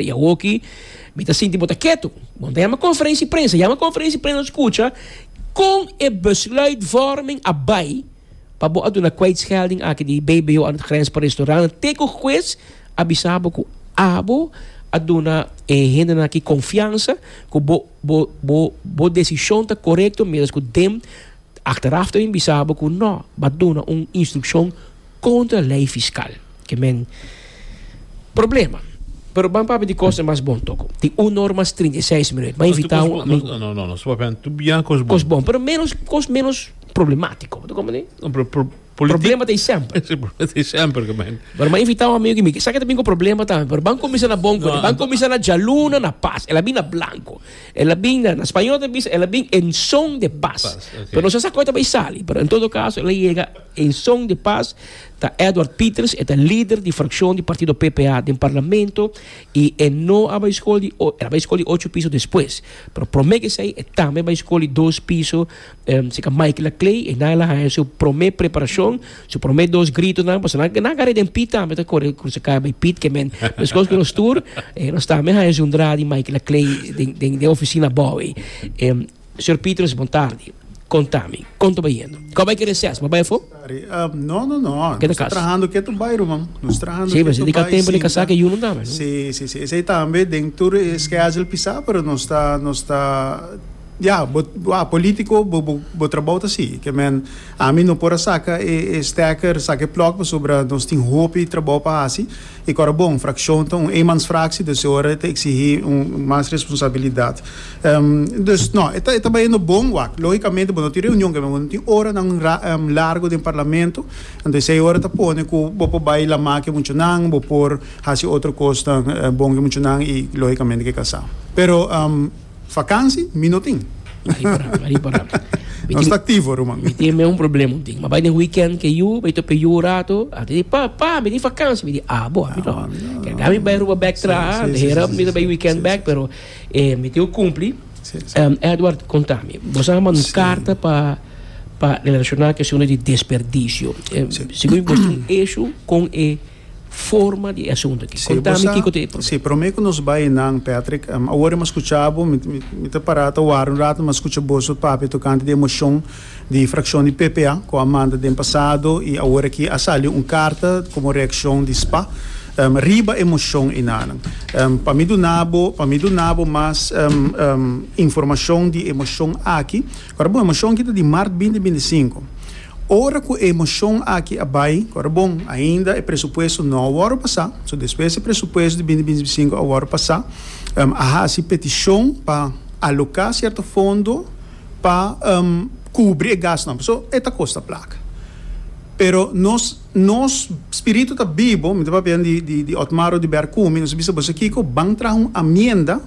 Te e awoki mi ta sinti bo ta ketu. Bon, ta yama konferensi prensa. Yama konferensi prensa skucha kon e besluitvorming a bai pa bo a duna kwijtschelding aki di BBO aan het grens pa restaurant te ku huez a bisa bo ku abo a duna e hendenan aki konfiansa ku bo bo bo bo desishon ta korekto mientras ku dem achteraf ta bin bisa bo ku no ba duna un instrukshon Contra ley fiscal ke men problema. Pero ban papia di cosnan mas bon toko. Tin un norma mas trinta i seis mi ret. Ban invita un amigo. No, no, no. Su papia tur bia cos bon. Cos bon, pero menos cos menos problematico. Ta comprende? No, pero pro, politi. Problema ta hay semper. Si, problema ta hay semper ke men. Pero ban invita un amigo ke mi ke sa ke ta bin ku problema tambe. Pero ban kuminsa na bon ku e. Ban kuminsa na djaluna, na pas. El a bin na blanco. El a bin na, na spañol ta bisa el a bin en son de pas. Pas, ok. Pero no sa sa koi ta bay sali. Pero en todo caso el a yega. En son di pas ta Edward Pieters, e ta lider di frakshon di partido PPA den parlamento i e no a bai skol di e a bai skol di ocho piso despues, pero promé kesei e tambe bai skol di dos piso serka Mike Laclay, einan el a haña su promé preparashon, su promé dos gritonan, pasobra nan nan kare den Piet tambe ta kore krusa kaya bai Piet ke men meskos ku nos tur, nos tambe haña su entrada di Mike Laclay den den den ofisina abou ei. Señor Petrus, Bon tardi. Conta mi, con ta bai yendo? Cua bai cu e reces? Bo a bai afo? Mari, No, no, no. Nos ta trahando ketu bai ruman. Nos trahando ketu bai sinta. Si, basi di ca tempo di casa cu e yunan tambe, no? Si, si, si. Esey tambe den tur schedule pisa, pero nos ta, nos ta, ya, bo, bo a politico, bo, bo, bo trabao ta sigui. Ke men, ami no por a saca e, e stekker, saca e plug, pasobra nos tin hopi trabao pa haci. E Kòrabon frakshon ta un eenmansfraksie, dus e ora e ta eksigí mas responsabilidat. Dus, nò, e ta bayendo bon wak. Lógikamente bo no tin reunion ke men bo no tin oranan largu den parlamento, anto esei ora ta pone ku bo por bai lamá ke muchanan, bo por hasi otro kosnan bon ke muchanan i lógikamente ke kasá. Pero. Vakansi mi no tin. Ari por nan, ari por nan. Nos ta activo ruman. Mi tin me un problema un tin. Mi a bai den weekend ke yu, bai tope yu un rato. A ta di, Pa, pa, mi tin vakansi. Mi di, Abo, ami no. Keda mi bai Aruba bek traha. Hera mi ta bai weekend bek, pero e mi tin ku kumpli. Edward, konta mi. Bo sa manda un karta pa pa relashoná ku e asuntu di desperdisio. Segun mi, bo tin un ishu kon e. forma di e asuntu aki. Kontami kiko ta e problema. Sí, promé ku nos bai nan, Patrick, awor mi a skucha bo, mi ta pará ta wara un ratu, mi a skucha boso papia tokante di e moshon di frakshon di PPA ku a manda den pasado i awor aki a sali un karta komo reakshon di spa riba e moshon enanan. Pa mi duna bo, pa mi duna bo mas informashon di e moshon aki, Ora bon, e moshon aki ta di mart binti binti sinku. Ora ku e moshon aki a bai, ora bon, ainda e presupuesto no a wòrdu pasá. So despues e presupuesto di binti binti sinku a wòrdu pasá, a hasi petishon pa aloká sierto fondo pa kubri e gasnan. Pasobra e ta kosta plaka. Pero nos nos spiritu ta bibu, mi ta papia di di Otmar Oduber Kumi, nos a bisa, Bo sa kiko? Ban traha un amienda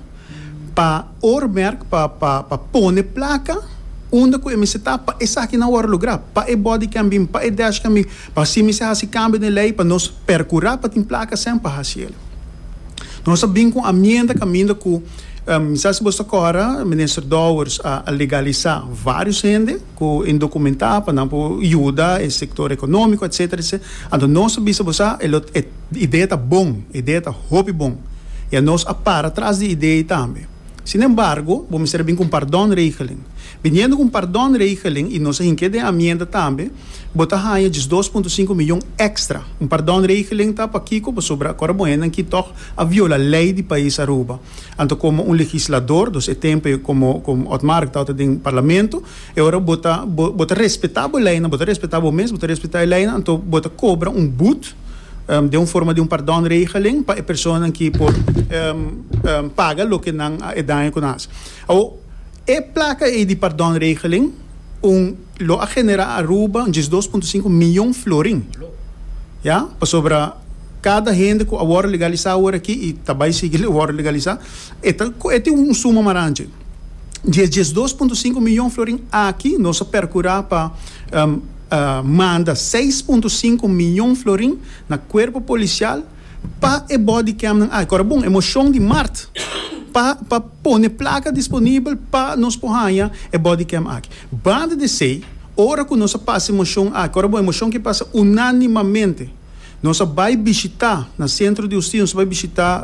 pa. Oormerk pa pa pa pone plaka unda ku e mester ta pa esaki nan wòrdu lugrá, pa e body cam bin, pa e dash cam bin, pa si mester hasi kambio den lei pa nos perkurá pa tin plaka sèn pa hasi el. Nos a bin ku un amienda kaminda ku, mi sa si boso ta kòrda, Minister Dowers a a legalisá vários hende. cu indocumentá pa nan por yuda e sector economico etcetera etcetera anto nos ta bisa bo sa e lo e idea ta bon e idea ta hopi bon ya nos a para tras di idea ei tambe sin embargo bo mester a bin cu un pardon regeling biniendo cu un pardon regeling y nos a hink'e den amienda tambe bo ta haya djis dos punto sinku miyon extra un pardon regeling ta pakico pasobra acorda bo hende aki tog a viola ley di pais Aruba. Anto komo un legislador, dos e tempu e komo komo Otmar ku tabata den parlamento, e ora bo ta bo bo ta respetá bo leinan, bo ta respetá bo mes, bo ta respetá e leinan, anto bo ta kobra un but den un forma di un pardònregeling pa e personanan ki por paga loke nan a e daño ku nan a hasi. Awo e plaka ei di pardònregeling un. Lo a genera Aruba un diesdos punto sinku miyon florin. Ya, pasobra kada hende ku a wòrdu legalisa awor aki i ta bai sigui wòrdu legalisa, e ta kohe tin un suma maranchi. Di e diesdos punto sinku miyon florin aki nos a perkurá pa manda seis punto sinku miyon florin na kuerpo polisial, pa e bodycamnan aki. Ora bon, e moshon di mart pa pa pone plaka disponibel pa nos por haña e bodycam aki. Banda di esei, ora ku nos a pasa e moshon aki, ora bon e moshon ke pasa unánimamente, nos a bai bishitá na Sentro di Hustisia, nos a bai bishitá.